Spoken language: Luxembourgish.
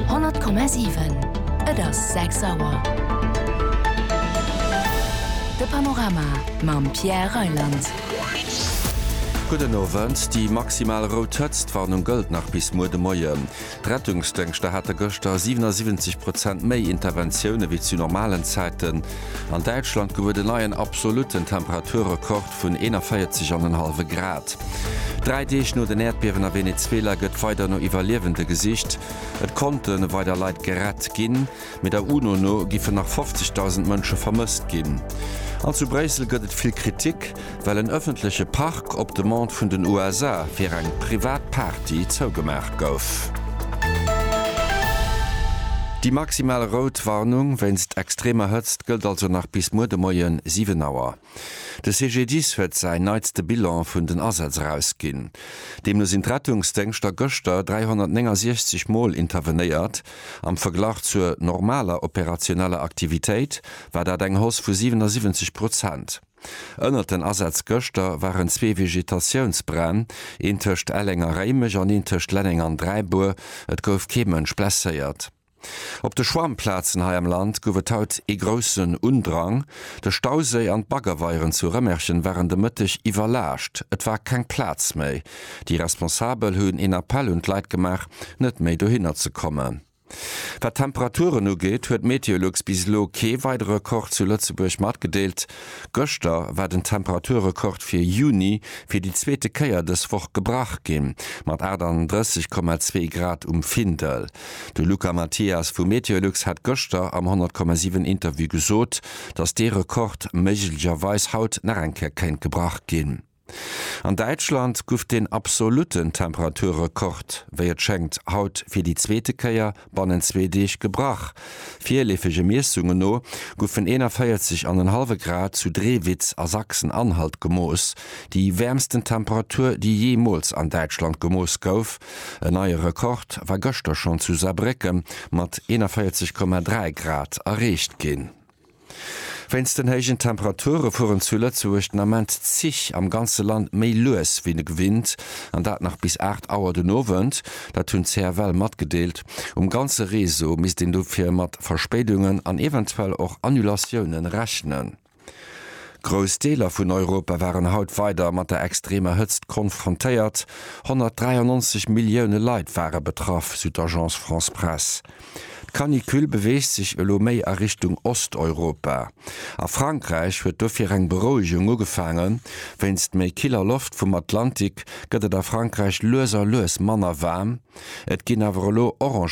100,7. Et ass 6 Auer. De Panorama mam Pierre Reyland. Gudden Owend. Déi maximal rout Hëtztwarnung gëllt nach bis muer de Moien. D'Rettungsdëngschter hate gëschter 77 Prozent méi Interventioune wéi zu normalen Zäiten. An Däitschland gouf et en neien absolutten Temperaturrekord, Hochwäert vun 41 an en hallwe Grad. Dräi Deeg no den Äerdbiewen a Venezuela gëtt weider no Iwwerliewende gesicht. Et konnte weider Leit gerett ginn, mee der UNO no giffen nach 50.000 Mënsche vermësst ginn. An zu Bréissel gëtt et vill Kritik, well en ëffentleche Park op Demande vun den USA fir eng privat Party zougemaach gouf. Déi maximal rout Warnung wéinst extremer Hëtzt gëllt also nach bis muer de Moie 7 Auer. De CGDIS huet säin neitste Bilan vun den Asätz erausginn. Deemno sinn d'Rettungsdéngschter gëschter 369 Mol intervenéiert. Am Verglach zur normaler operationeller Aktivitéit war dat eng Hausse vu 77 Prozent. Ënnert den Asätz gëschter waren zwee Vegetatiounsbränn, een tëscht Elleng a Réimech an een tëscht Lenneng an Dräibuer. Et gouf kee Mënsch blesséiert. Op de Schwammplazen hei am Land gouf et haut ee groussen Undrang. De Stauséi an d'Baggerweieren zu Rëmerchen waren de Mëtteg iwwerlaascht. Et war keng Plaz méi. Déi Responsabel hunn een Appell un d'Leit gemaach, net méi dohinner ze kommen. Wat d'Temperaturen ugeet, huet Meteolux bis elo kee weidere Rekord zu Lëtzebuerg matgedeelt. Gëschter war den Temperaturrekord fir Juni fir déi zweete Kéier dës Woch gebrach ginn, mat 38,2 Grad um Findel. De Luca Mathias vu Meteolux hat gëschter am 100,7 Interview gesot, datt dee Rekord méiglegerweis haut nach eng Kéier kéint gebrach ginn. An Däitschland guff den absolutten Temperaturrekord, wéi et schéngt, haut fir déi zweete Kéier bannent zwee Deeg gebrach. Virleefege Miessunge no guffen 41 an en hallwe Grad zu Drewitz a Sachsen-Anhalt gemooss, déi wäermsten Temperatur, déi jeemools an Däitschland gemooss gouf. En neie Rekord war gëschter schonn zu Saarbrécke mat 41,3 Grad erreecht ginn. Wéinst den héijen Temperature fueren zu Lëtzebuerg den Ament d'Zich am ganze Land méi lues wéi gewinnt an dat nach bis 8 Auer den Owend. Dat hunn d'CFL matgedeelt. Um ganze Réseau misst een dofir mat Verspéidungen an eventuell och Annulatioune rechnen. Grouss Deeler vun Europa waren haut weider mat der extremer Hëtzt konfrontéiert, 193 Millioune Leit ware betraff, sou d'Agence France-Presse. D'Canicule beweegt sech elo méi a Richtung Osteuropa. A Frankräich huet dofir eng Berouegung ugefaangen, wéinst méi killer Loft vum Atlantik gëtt et a Frankräich lues a lues manner waarm, et ginn awer elo orange